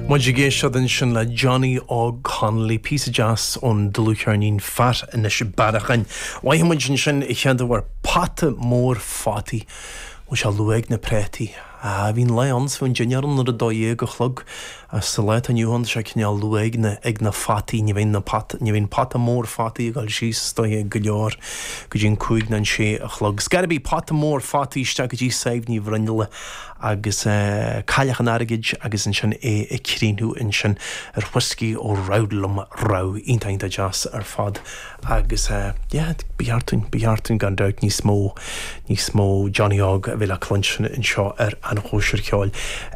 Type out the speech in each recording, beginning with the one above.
Muid ag éisteacht ansin le Johnny Óg Connolly, píosa deas ón dlúthcheirnín Fear Inis Bearacháin. Mhoithigh muid ansin a chéaduair pota mór fataí. Bhfuil sé luath ag na préataí? Ah, bhí an lá ann is bhíodh an dinnéar ann ar a dó dhéag a chlog. Ach sa lá atá inniu ann tá sé cineál luath ag na, ag na fataí. Ní bhíonn na pota, ní bhíonn pota mór fataí ag dul síos i dtithe go leor go dtí an cúig nó an sé a chlog. Is chuaigh muid ó phota mór fataí isteach go dtí Sadhbh Ní Bhruinnealla. agus Cailleach an Airgid agus ansin é ag críochnú ansin ar Whiskey Ó Roudelum Row iontach iontach deas ar fad agus yeah ba cheart dúinn ba cheart dúinn gan dabht níos mó níos mó Johnny Óg a bheith le cluinstin anseo ar an chóisir cheoil.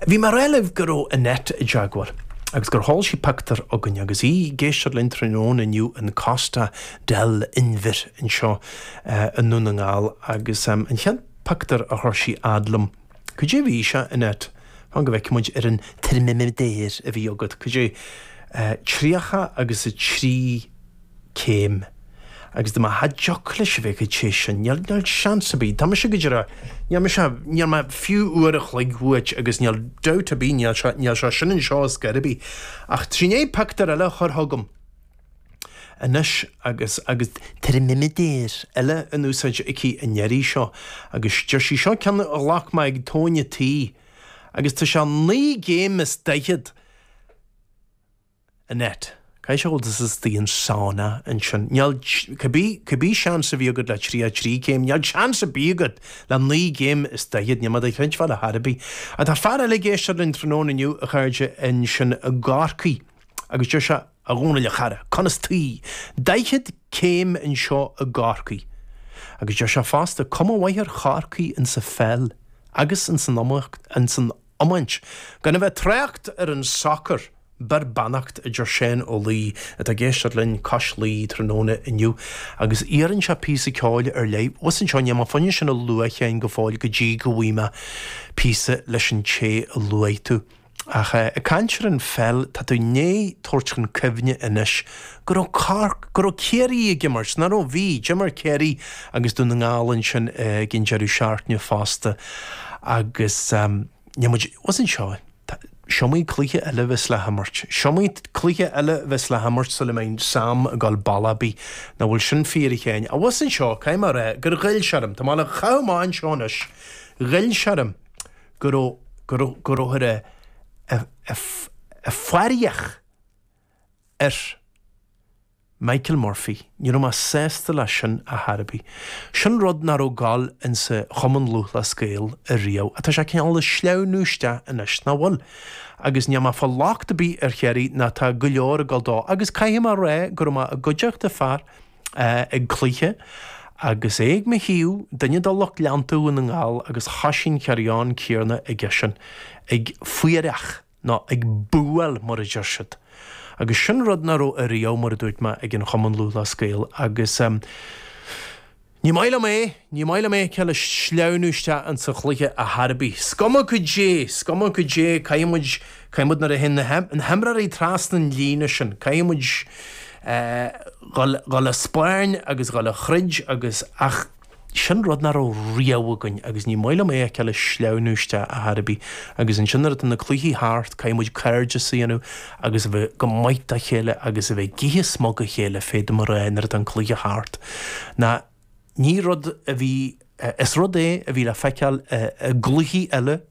Bhí mé ag rá libh go raibh Annette i dteagmháil agus gur sheol sí pictiúr chugainn agus í ag éisteacht linn tráthnóna inniu in Costa del Inbhir anseo i nDún na nGall agus an chéad pictiúr a chuir sí a fhad liom. Cad é a bhí sé, Annette? Fan go bhfeicfimid, ar an teirmiméadar a bhí agat, cad é? Tríocha agus a trí céim. Agus dúirt mé cha dtiocfadh leis a bheith chomh te sin. Níl seans ar bith. Tá mise go díreach. Níl mise. Níl mé fiú uair a chloig uait agus níl dabht ar bith, níl sé sin anseo ar scor ar bith. Ach tá sí i ndiaidh pictiúr eile a chur chugam. anois agus agus teirmiméadar eile in úsáid aici an iarraidh seo agus deir sí seo ceann a ghlac mé ag tóin an tí agus tá sé naoi gcéim is daichead, Annette. Caithfidh sé go bhfuil tusa istigh i sauna ansin. Níl, cibé seans a bhí agat le tríocha trí céim, níl seans ar bith agat le naoi gcéim is daichead, níl mé do chreidbheáil ar chor ar bith. Tá fear eile ag éisteacht linn tráthnóna inniu, a chairde, ansin i gCorcaigh agus deir sé, A Dhónaill a chara, conas taoi? Daichead céim anseo i gCorcaigh. Agus deir sé fosta, cuma mhaith ar Chorcaigh ins a pheil agus ins an iomaíocht, ins an iomáint, gan a bheith ag trácht ar an sacar! Beir beannacht a deir Seán Ó Laoi atá ag éisteacht linn cois Laoi tráthnóna inniu agus iarrann sé píosa ceoil ar leith abhus anseo. Níl mé fiú in ann sin a lua féin go fóill go dtí go bhfaighidh mé píosa leis an té a luaigh tú. Ach ag caint ar an pheil, tá tú i ndiaidh tabhairt chun cuimhne anois go raibh Cork, go raibh Ciarraí ag imirt, ná raibh? Bhí, d'imir Ciarraí agus Dún na nGall ansin ag an deireadh seachtaine fosta agus níl muid, abhus anseo, is iomaí cluiche eile a bheas le himirt, is iomaí cluiche eile a bheas le himirt sula mbeidh Sam ag gabháil bealach ar bith, nach bhfuil sin fíor a Sheáin? Á abhus anseo, caithfidh mé a rá gur ghoill sé orm, tá mé le, chaitheadh mé anseo anois, ghoill sé orm go go rabhthar ag faíreach ar Michael Murphy. Ní raibh mé sásta leis sin a Harvey. Sin rud nach raibh ag gabháil insa Chumann Lúthchleas Gael ariamh. Ach tá sé cineál ag sleamhnú isteach anois, nach bhfuil? Agus níl mé ag fáil locht ar bith ar Chiarraí ná tá go leor ag dul dó. Agus caithfidh mé a rá go raibh mé i gcuideachta fear, ag cluiche agus é ag mo thaobh, duine de lucht leanta Dhún na nGall agus thoisigh an carry on céarna aigesean, ag faíreach nó ag búáil mar a deir siad. Agus sin rud nach raibh ariamh, mar a dúirt mé, ag an Chumann Lúthchleas Gael agus ní maith liom é, ní maith liom é a fheiceáil ag sleamhnú isteach insa chluiche a Harvey. Is cuma goidé, is cuma goidé, caithfidh muid, caithfidh muid nuair a théann na himreoirí trasna an líne sin, caithfidh muid, Dhul a' spairn agus dhul a' throid agus, ach sin rud nach raibh riamh againn agus ní maith liom é a fheiceáil ag sleamhnú isteach a Harvey agus ansin nuair atá na cluichí thart caithfidh muid cairdeas a dhéanamh agus a bheith go maith dá chéile agus a bheith ag ithe smug a chéile féadaim a rá nuair atá an cluiche thart ná ní rud a bhí, is rud é a bhí le feiceáil i gcluichí eile.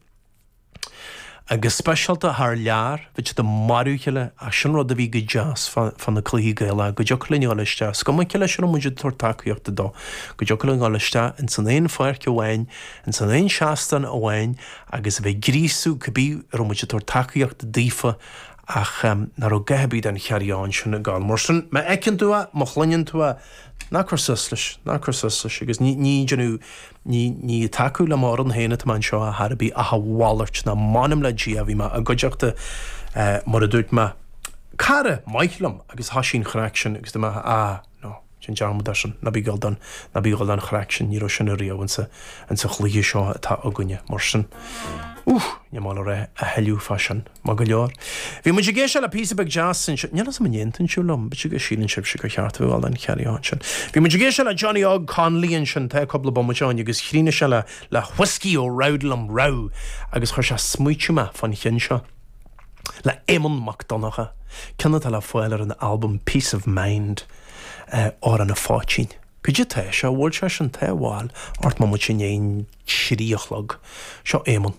go speisialta thar lear, bhí siad ag marú a chéile ach sin rud a bhí go deas fá na cluichí Gaelacha, go dtiocfadh linn a dhul isteach, is cuma cé leis a raibh muid ag tabhairt tacaíochta dó, go dtiocfadh linn a dhul isteach ins an aon pháirc amháin, ins an aon seastán amháin agus a bheith ag gríosú cibé a raibh muid ag tabhairt tacaíochta daofa ach nach raibh a dhath ar bith den carry on sin ag gabháil. Mar sin, má fheiceann tú é, má chluineann tú é, ná cuir suas leis, ná cuir suas leis agus ní déanamh, Ní, ní ag tacú le m'fhoireann féin atá mé anseo, a Harvey, ach a mhalairt ná m'anam le Dia, bhí mé i gcuideachta, eh, mar a dúirt mé. Cara maith liom, agus thoisigh an chraic sin, agus dúirt mé, ah, no, sin dearmad air sin, ná bí ag gabháil don, ná bí ag gabháil don chraic sin, ní raibh sin ariamh ins a', ins a' chluiche seo atá againne, mar sin, ooh, níl mé ag gabháil a ráit a thuilleadh fá sin. Maith go leor. Bhí muid ag éisteacht le píosa beag deas ansin, níl a fhios agam an aontaíonn sibh liom, síleann sibhse gur cheart a bheith ann an carry on sin. Bhí muid ag éisteacht le Johnny Óg Connolly ansin tá cúpla bomaite ann agus chríochnaigh sé le Whiskey ó Roudelum Row agus chuir sé ag smaoitiú mé fán cheann seo le Éamonn Mac Donncha, ceann atá le fáil ar an albam Peace of Mind, Amhrán an Phoitín. Goidé tá sé, bhuail sé sin tá a bhfáil ocht mbomaite i ndiaidh an trí a chlog. Seo Éamonn.